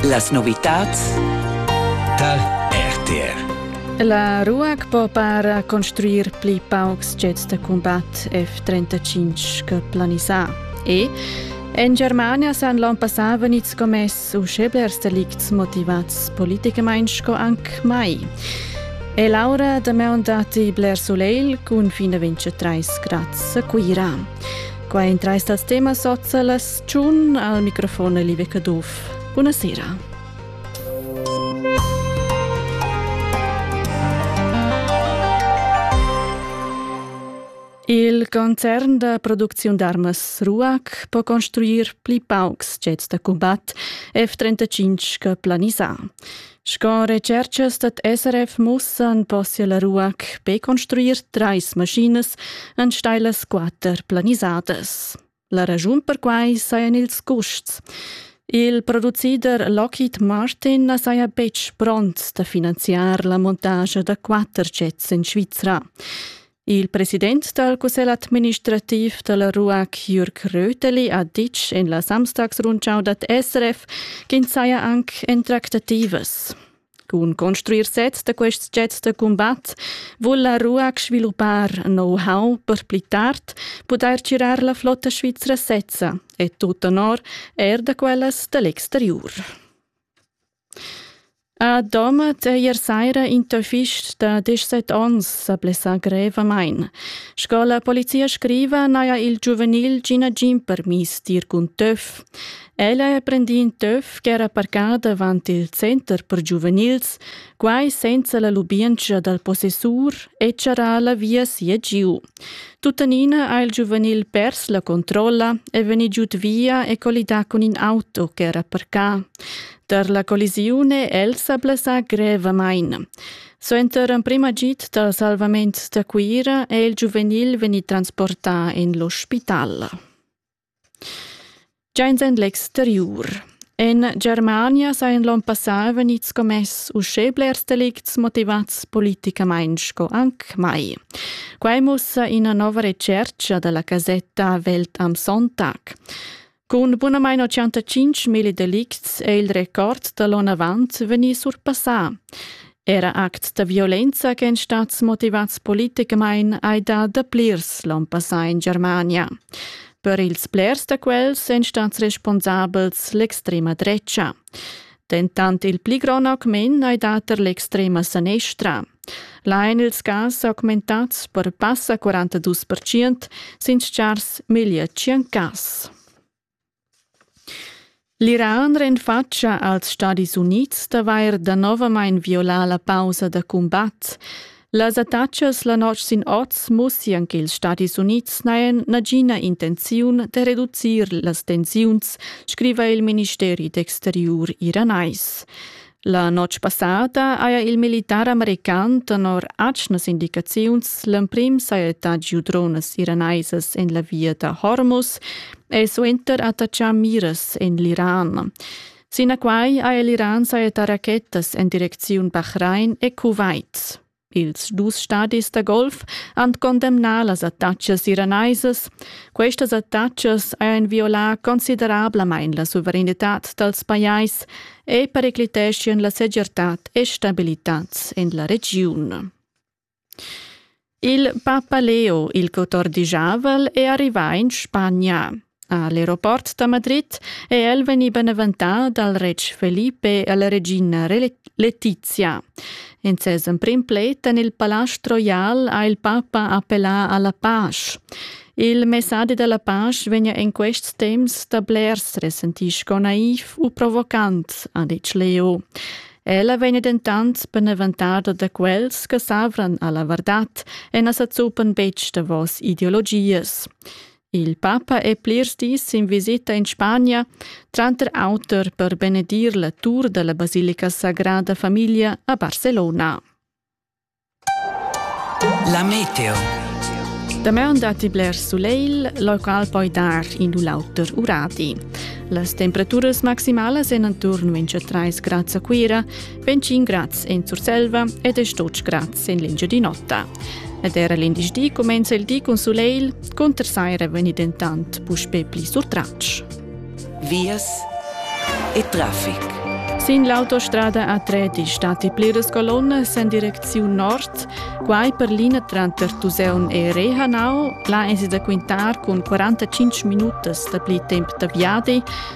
Las novitads tar RTR. La RUAC po para construir pli paucs jets da combat F-35 che planisà. E en Germania san l'on passà venids commess uschè blers delicts motivats politicamain sco anc mai. E Laura da Meun dati bler soleil cun fin a 23 grads a Cuira. Qua in trais dals temas sozialas Tschun al microfon Live Caduff. Buonasera. Il concern da producziun d'armas Ruac po construir pli paucs jets da combat F-35 che planisà. Sco recerchas dat SRF mussan possia la Ruac be construir trais maschinas en stailas quatter planisadas. La raschun per quai sajan ils custs. Il producider Lockheed Martin na saja betg pront da finanziar la montascha da quatter jets en Svizra. Il president dal cussegl administrativ da la RUAC Jürg Röteli ha ditg en la Samstagsrundschau dad SRF ch'ins saja anc en tractativas. Cun construir sets da quest jet da cumbat vul la RUAC sviluppar know-how per pli tard pudair tgirar la flotta svizra sezza e tut onor er da quellas da l'exteriur. A Domat ier saira in fist da 17 ons sa blessa grevamain. Sco la polizia scriva, naja il giuvenil Gina Gin permis dir cun töf. Ella ha prendì in töf ch'era parcada avant il center per giuvenils, quai senza la lubientscha dal possessur e charrà la via sia giu. Tuttenina ha il giuvenil pers la controlla e vegnì giud via e collidà cun in auto ch'era parcà. Tar la collisione el s'ha blessà grevamain. Suenter l'emprim agid dal salvament da Cuira è il giuvenil vegnì transportà en l'ospital. Giains in l'exteriur. In Germania sajan l'on passà vegnids commess uschè blers delicts motivats politicamain sco anc mai. Quai mussa ina nova retschertga da la casetta Welt am Sonntag. Cun bunamain 85.000 delicts è il record da l'onn avant vegnì surpassà. Era act da violenza ch'èn stads motivads politicamain hai dà da plirs l'onn passà in Germania. Per ils blers da quels èn stads responsabels l'extrema drecha. Dentant il pli grond augment hai dà tar l'extrema sanestra. Là èn ils cas augmentads per passa 42% sin stgars meglio 100 cas. L'Iran renfatscha als Stadis Unids d'avair danovamain violà la pausa da cumbat. Las attacas la notg sin oz mussian ch'ils Stadis Unids n'hajan nagina intenziun da reducir las tensiuns, scriva il ministeri d'exteriur iranais. La notg passada haja il militar american tenor atgnas indicaziuns l'emprim sajettà giu dronas iranaisas en la via da Hormuz e suenter attaccà miras en l'Iran. Sinaquai ha l'Iran sajettà rachettas en direcziun Bahrain e Kuwait. Ils dus stadis da golf han condemnà las attacas iranaisas. Questas attacas hajan violà considerablamain la suveranitad dals pajais e pericliteschian la segirtad e stabilitad en la regiun. Il Papa Leo il 14 è arrivà in Spagna. A l'aeroport da Madrid è el vegnì beneventà dal retg Felipe e la regina Letizia. In ses emprim pled en il Palast Royal ha il papa appellà a la pace. Il messadi da la pace vegna en quests temps da blers resentì sco naiv u provocant, ha ditg Leo. Ella vegn dentant beneventada da quels che savran alla vardad e na sa zuppan betg davos ideologias. Il papa è plirs dis sin visita in Spagna, tranter auter per benedir la tur dalla Basilica Sagrada Familia a Barcelona. La meteo. Damaun datti blers sulegl, local poi dar in u l'auter urati. Las temperaturas maximalas en attorno in 3 grads a Cuira, 25 grads en Surselva ed es tots grads en l'Engiadin'Ota. Ed era l'indici comenza il di cun sulegl, cunter saira vegni dentant puspè pli surtratg. Vias e traffic. Sin l'autostrada A3 di stati pliras colonnes en direcziun nord, quai per linea tranter Tuseun e Rehanau, là è si da quintar cun 45 minutas da pli temp da viadi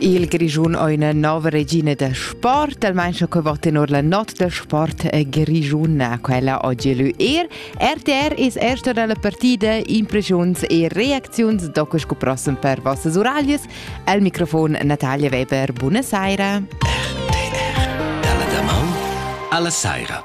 Il Grischun ha üna nova regina da sport, almain che va tenor la not da sport grischuna, quella oggi lü er. RTR es erta dalla partida impressiuns e reacziuns doco sco prossem per vossas uraglias. Al microfon Natalia Weber, buona saira. RTR, dalla da Alla saira.